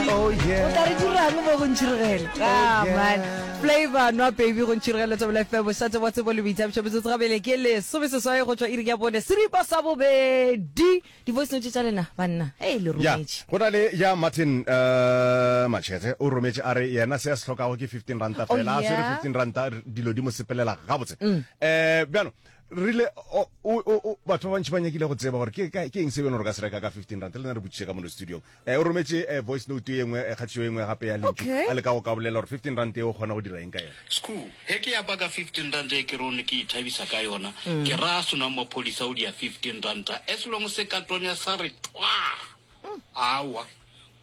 Oh o tla yeah. re dirang mo go ntšhiregele ah yeah. man flavor nwa baby go ntšhiregele tsebela fm bošatse wa tsebo le boithabišo metsotso gabele ke lesome seswai go tšwa iri ya bone seripa sa bobedi di-voice note tša lena banna e le ya rometše go na le ya martin uh, machete o rometše a re yena se a se hlokago ke 15 ranta Oh, fela a swere yeah. 15 ranta r- dilo di mo sepelela gabotse um bjano rile o- o- o- o- batho ba bantši ba nyakile go tseba gore ke ka- ke eng se bjone re ka se reka ka 15 ranta le na re botšiše ka mono studiong O rometše voice note ye nngwe, kgathišo ye nngwe gape ya lentšu, a leka go ka bolela gore fifteen rand yeo o kgona go dira eng ka yena. Skhoo, Ge ke ya baka fifteen rand ye ke rone ke ithabisa ka yona, ke ra a senwang maphodisa o di ya fifteen rand as long se ka tonya sa re twaa, aowa,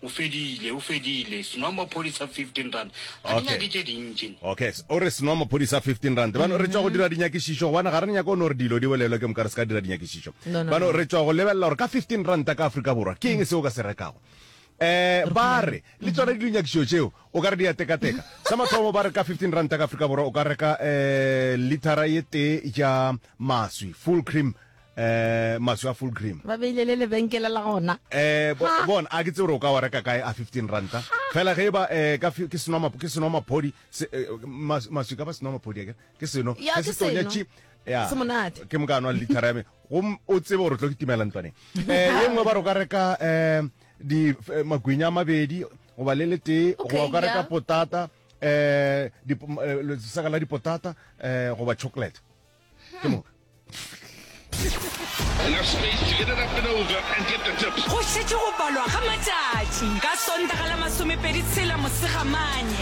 o fedile, o fedile, senwang maphodisa fifteen rand ga di nyake tše dintši okay o re senoa maphodisa 15 rand bano re tšwa go dira dinyakišišo gobane ga re nyaka o ne gore dilo di bolelwe ke moka re se ka dira dinyakišišo bano re tšwa go lebelela gore ka 15 ranta ka aforika borwa ke eng se o ka se rekago eh ba re le tsona di dinyakišo tšeo o ka re di ya tekateka sa mathomo ba re ka 15 rand ka afrika borwa o ka reka eh litara ye tee ja maswi full cream eh maswi a full cream ba beile le lebenkele la gona eh bona a ke tse o ka wa reka kae a 15 ranta fela ge ba eh ka ke seno mapo ke seno maphodi eh, maswi ka ba seno maphodi ke ke seno ke se tonya chi ya semonate ke mo ka nwa litara me go o tsebe gore tlo ke timela ntwane eh ye nngwe ba re ka reka eh di eh, magwinya mabedi go ba le le tee go ba ka reka potata eh di eh, saka la dipotata eh go ba chocolate ke moka go šetše go balwa ga matšatši ka sontaga la masomepedi tshela mosegamanye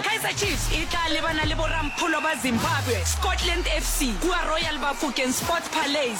kaizer chiefs e tla lebana le borampholo ba zimbabwe scotland fc kua royal bafokeng sports palais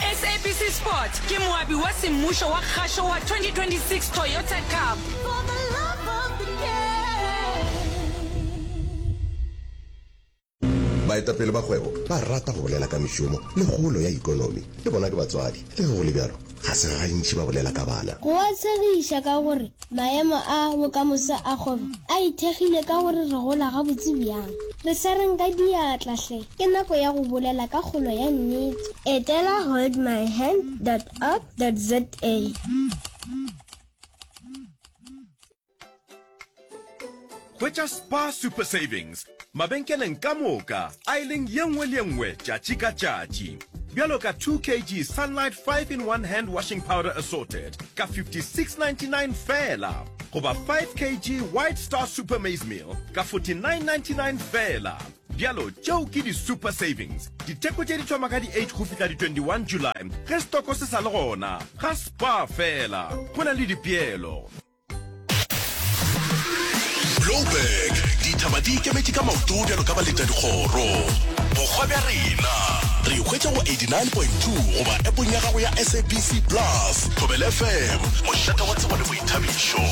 SABC Sport ke moabi wa semmušo wa kgašo wa 2026 Toyota Cup. baetapele ba kgwebo ba rata go bolela ka mešomo le kgolo ya ikonomi le bona ke batswadi le ge go le bjalo ga se gantši ba bolela ka bana Go a tshegiša ka gore Maemo a bokamoso a kgwebo a ithekgile ka gore re gola gabotse bjang. Re swareng ka diatla hle! Ke nako ya go bolela ka kgolo ya nnete. Etela holdmyhand dot org dot za. Hwetša Spar Super Savings mabenkeleng ka moka aeleng ye nngwe le ye nngwe tšatši ka tšatši. Bjalo ka 2 kg Sunlight 5 in 1 Hand Washing Powder Assorted ka 56.99 feela goba 5 kg White Star Super Maize Meal ka 49.99 feela. Bjalo tšeo ke di Super Savings. Ditheko tše di thoma ka di 8 go fihla di 21 July ge setoko se sa le gona. Ga Spar feela go na le dipeelo. Joburg dithaba di ikemetše ka maoto bjalo ka baleta dikgoro bokgwa bja rena re hwetša go 89.2 goba epong ya gago ya sabc plus thobel fm mošata wa tsebo le boithabišo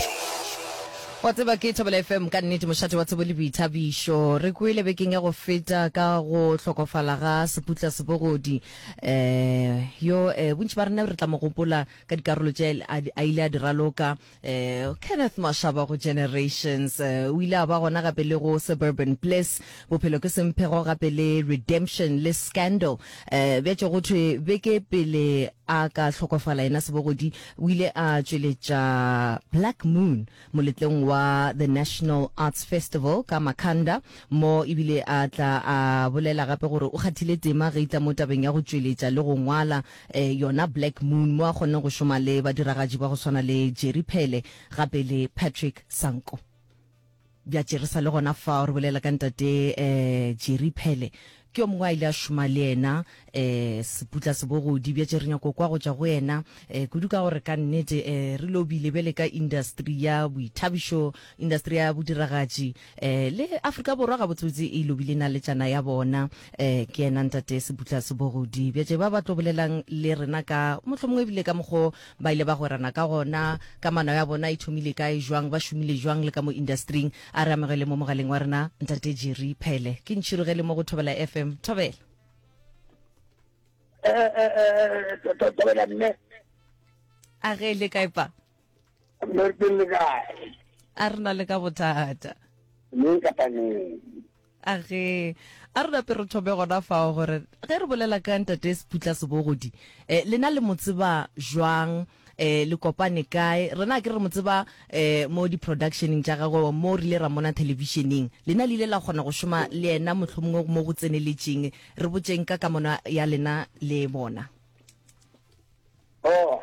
wa tseba ke thobela fm ka nnete mošate wa tsebo le boithabišo re kwele bekeng ya go feta ka go hlokofala ga seputla sebogodi um yo um bontši ba rena re tla mo gopola ka dikarolo tše a, a ile a di raloka um kenneth mashaba go generations um o ile a ba gona gape le go suburban bliss bophelo ke semphego gape le redemption le scandal um bja tšo go thwe beke pele a ka hlokofala yena sebogodi o ile a tšweletša black moon moletlong wa the national arts festival ka makanda mo ebile a tla a bolela gape gore o kgathile tema ge itla mo tabeng ya go tšweletša le go ngwala eh, yona Black Moon, mo a kgonne go šoma le badiragatši ba go swana le Jerry Phele gape le Patrick Sanko. Bja tšerisa le gona fa re bolela ka ntate eh, Jerry Phele ke yo mongwe a ile a šoma le yena eh, seputla sebogodi bja tšere nyako kwa go tšwa go yena eh, kudu ka gore ka nnete eh, re lobile bjale ka industry ya boithabišo industry ya bodiragatši Eh, le Afrika Borwa gabotsebotse e lobile naletšana ya bona. Eh, ke yena ntate Sebutla Sebogodi. Bjatše ba ba tlo bolelang le rena ka mohlomongwe ebile ka mokgo ba ile ba gwerana ka gona, ka mano ya bona e thomile kae, jwang, ba šomile jwang le ka mo industry-ing. A re amogele mo mogaleng wa rena ntate Jerry Phele. Ke ntšhirogele mo go Thobela FM. Thobela. Eh, eh, eh, eh, eh, Thobela mme. A ge le kae pa? Mmerkeng le kae? A re na le ka bothata. Neng kapa neng. a ge a rona pe re thome gona fao gore ge re bolela ka ntate seputla sebogodi um lena le mo tseba jwang um le kopane kae rena ke re mo tseba um mo di-productioneng tša gagwe mo re ile ra mona thelebišeneng lena le ile la kgona go šoma le yena motlho mongwe mo go tseneletšeng re botseng ka kamano ya lena le bona o oh.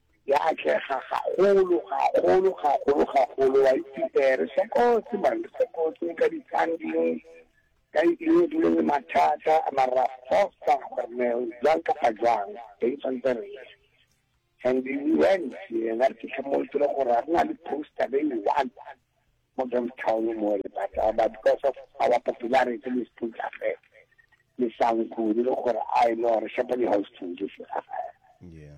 Ya atlega gagolo, gagolo, gagolo, gagolo, wa itse. Ee, re sokotse, man, re sokotse ka di-funding, ka eng, dilo le mathata, mara fosa gore ne jwang kapa jwang, teng tshwanetse re ye. And we went, yena re fitlha mo tsere gore a re na le poster be e one mo Johnstown mo le bata, but because of our popularity le sputla fe, le sanku, le gore I know, re shapa di-house to di fela. Yeah.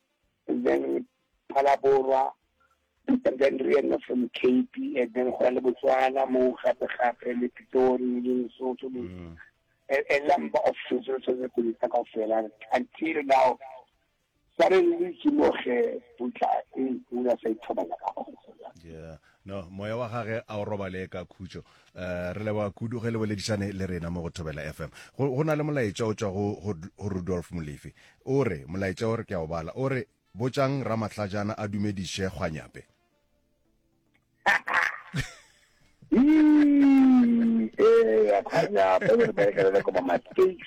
and then re phala borwa and then re ena from cape and then go ya le botswana mo gape gape le pitori le lesotho le mm. a number of things re tshwanetse go itsa kao fela until now suddenly ke mo ge putla e pula sa ithobala ka gona No, moya wa gage a o robale ka khutšo. Uh, re leboga kudu ge le boledišane le rena mo go Thobela FM. Go, go na le molaetša o tšwa go, go, go Rudolf Molefi. O re, molaetša o re ke a o bala. O re, botšang Ramahlajana a dumediše Kgwanyape. Ee, Kgwanyape o re berekelele ko Mama States.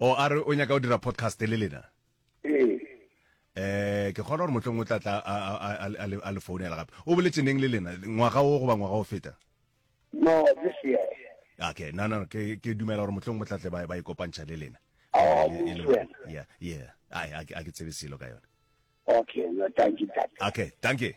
o a re o nyaka o dira podcast le lena ee eh ke kgona gore motlong o tla tla a- a- a- a- a le- a le founela gape o boletse neng le lena ngwaga o goba ngwaga o feta no this year okay no no ke ke dumela gore motlong motlatle ba ba ikopantšha le lena Oh, Eh, e le utlwa. mo- yeah yeah ai a ke a ke tsebe selo ka yone okay no thank you tata okay dankie